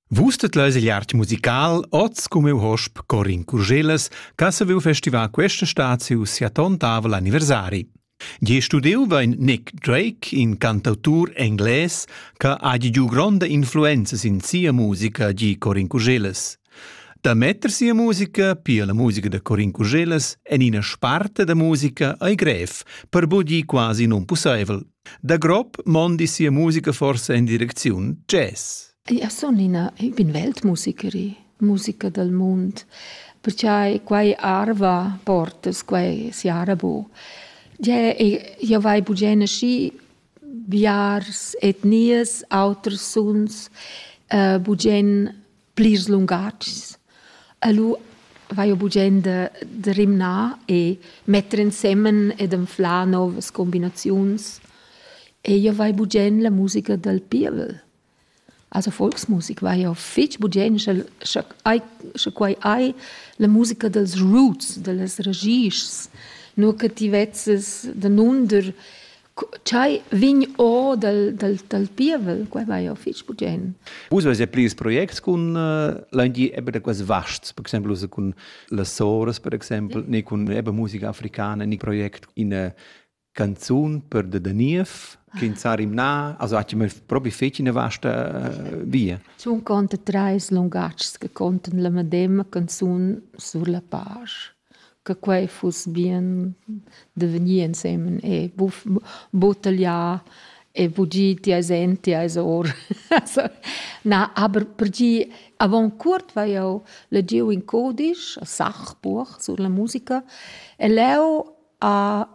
Vus tet leis igl art musical oz come u hosp Corin Curgelas, ca se veu festivar questa staziu sia tontavel anniversari. Gie studiu vein Nick Drake, in cantautur engles, ca ha giu gronda influenza sin sia musica, gi Corin Curgelas. Da metter sia musica, pia la musica de Corin Curgelas, en ina sparte da musica ei grev, per bugi quasi non pusseivel. Da grob mondi sia musica forsa in direcziun jazz. Ja sun ina, ich bin Weltmusikerin, musica dal mund, perché quai arva portas, quai si arabo. Ja vai bugena schi biars etnias, auters suns, uh, bugen plirs lungatgs. E lu vaiu bugenda da rimnar e metter ensemen ed anflar novas combinaziuns. E io vai bugen la musica dal pievel. Also Volksmusik vai jau fitg bugen, sche, sche, ai, sche quai hai la musica dals roots, da las ragischs, nur che ti vezzes danunder Ch'ei vegn or dal, dal, dal pievel, quei vai jau fitg bugen. Vus avais ja plirs projects cun l'Andi eben da quels vasts, per exempel cun las soras, per exempel, ne cun eben musica africana, ne project in canzun per de Daniev, che in sarim na, also hat mir probi fetg in vasta via. Sun conta treis lungatgs che contan la medema canzun sur la page. che quei fuss bien da vegnir ensemen e buca tagliar e buca gir ti eis en, ti eis or. Na, aber per gir avon cuort vai jeu legiu in codisch, a Sachbuch sulla musica e leu ha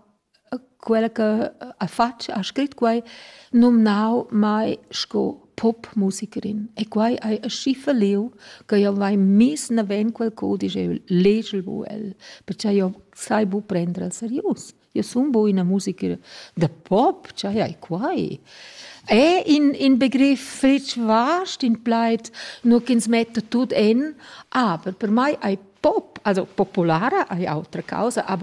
Quella che ha fatg, ha scrit quai, numnau mai sco popmusikerin. E quai hai aschi falliu che jeu vai miss naven quel cudisch e legel bu el, pertgei jeu sai bu prender el serius. Jeu sun bu ina musikerin da pop, tschei hai quai? E in, in begriff fetg vast, in plaid, nur ch'ins metta tut en, aber per mei ei pop, also populara ei autra causa, aber